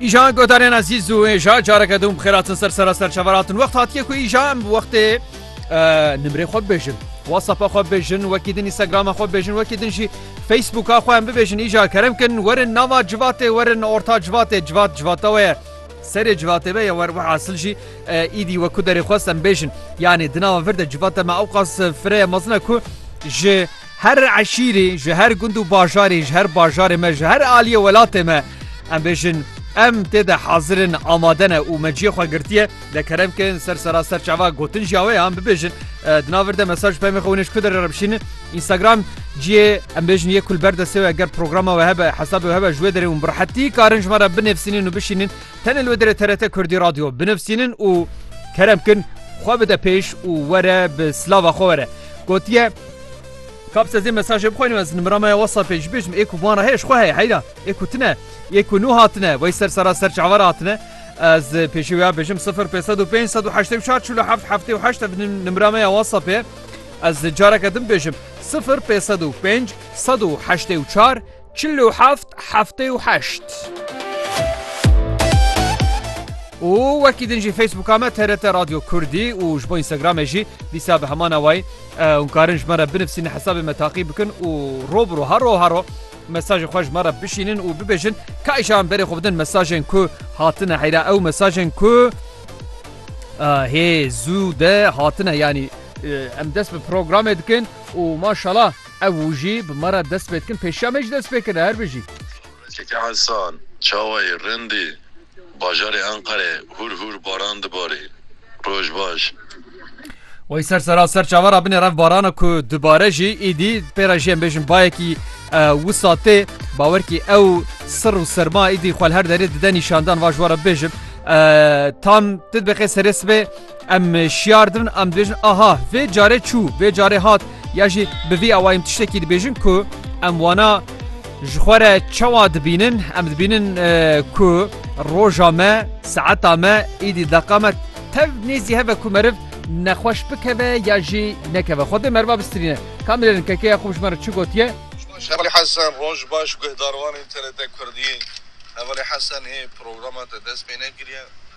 Îjan godarên ezîz û êja careke dûm xêratin ser sera ser çeveratin wext hatiye ku îja em wextê nimrê xwe bibêjin. WhatsApp'a xwe bêjin wekî din Instagram'a xwe bêjin wekî din jî Facebook'a xwe em bibêjin îja kerem kin werin nava civatê werin orta civatê civat civata we ye. Serê civatê ve ye wer we asil jî îdî we ku derê xwest em bêjin. Yanê di nava vir de civata me ewqas fireye mezin e ku ji Her eşîrê, ji her gund û bajarê, ji her bajarê me, ji her aliyê welatê me em bêjin em tê de hazir in, amade ne û me ciyê xwe girtiye. De kerem kin ser seraser çava gotin jî awe ye em bibêjin. Eh, di nav vir de mesaj pemê xwe hûn ê ji ku derê re bişînin. Instagram ciyê em bêjin yê ku li ber destê we eger programa we hebe, hesabê we hebe ji wê derê hûn bi rehetî karin ji me re binivîsînin û bişînin. Tenê li wê derê TRT Kurdî Radio binivîsînin û kerem kin xwe bide pêş û were bi silava xwe were. Gotiye Kap se zê mesajê bixwînim ez nimira me ya WhatsAppê jî bêjim ê ku van re heye ji xwe heye heyra ê ku tune ê ku nû hatine wey ser sera ser çawa re hatine ez pêşî wê ya bêjim sifir pê sed û pênc sed û heştê û çar çil û heft heftê û heşt ev nimira me ya WhatsAppê ez careke din bêjim sifir pê sed û pênc sed û heştê û çar Çil û heft, heftê û heşt. Û wekî din jî Facebooka me TRT Radyo Kurdî û ji bo Instagramê jî dîsa bi heman awayî hûn karin ji me re binivîsînin hesabê me taqî bikin û rov bi rov her rov her rov mesajê xwe ji me re bişînin û bibêjin ka îşan berê xwe bidin mesajên ku hatine heyra ew mesajên ku hê zû de hatine yanî em dest bi programê dikin û maşala Ev û jî bi me re dest pê dikin, pêşiya me jî dest pê kir e. Her bijî. Keke Hesan, Çawayê Rindî, bajarê Enqerê hûr hûr baran dibarî. Roj baş. Wey ser sera ser çava ra binêr ev barana ku dibare jî îdî pê re jî em bêjin bayekî wisa tê. Bawer kî ew sir û serma îdî xwe li her derê dide nîşandan. Vaj were bibêjim tam ti dibe qê serê sibê. Em şiyar dibin, em dibêjin aha vê carê çû, vê carê hat ya jî bi vî awayî em tiştekî dibêjin ku em wana ji xwe re çawa dibînin, em dibînin ku roja me, saeta me, îdî deqa me tev nêzî heve ku meriv nexweş bikeve ya jî nekeve. Xwe dê meriva bistrîne. Kamilên kekeya xwe bi ji me re çi gotiye? Hevalî Hesen, Roj baş, guhdarvanên TRT Kurdiyê. Hevalî Hesen ê programa te dest pê nekiriye.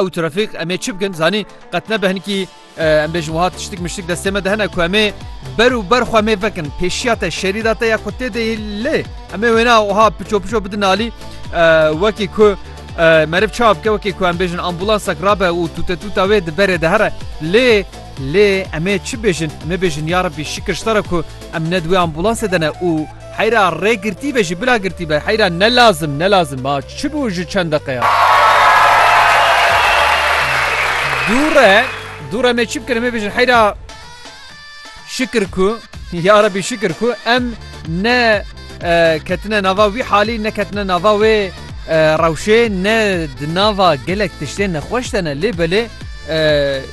Ew trafîk em ê çi bikin zanî qet nebe hinkî em bêjin wiha tiştik miştik destê me de hene ku em ê ber û ber xwe em ê vekin pêşiya te şerî da te ya ku tê de lê em ê wêna wiha piço piço bidin alî wekî ku merib çap ke wekî ku em bêjin ambulansak rabe û tûte tûta wê di berê de here lê lê em ê çi bêjin em ê bêjin ya rebî şikir ji te re ku em ne di wê ambulansê de ne û Heyra rê girtî be jî bila girtî be heyra ne lazim ne lazim ma çi bû ji çend deqeya. Dûre dûre me çi bikin em ê bêjin heyra şikir ku ya rebî şikir ku em ne ketine nava wî halî ne ketine nava wê rewşê ne di nava gelek tiştê nexweş de ne lê belê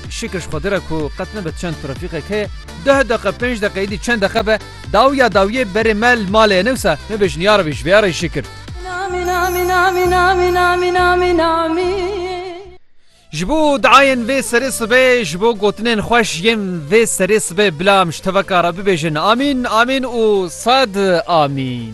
şikir ji xwedire ku qet nebe çend trafîqek heye deh deqe pênc deqe îdî çend deqe be Dawiya dawiyê berê me li malê ye newsa me bejniyar bî ji vê ya re şikir. Ji bo diayên vê serê sibê ji bo gotinên xweş yên vê serê sibê bila em ji teveka re bibêjin Amîn Amîn û sed Amîn.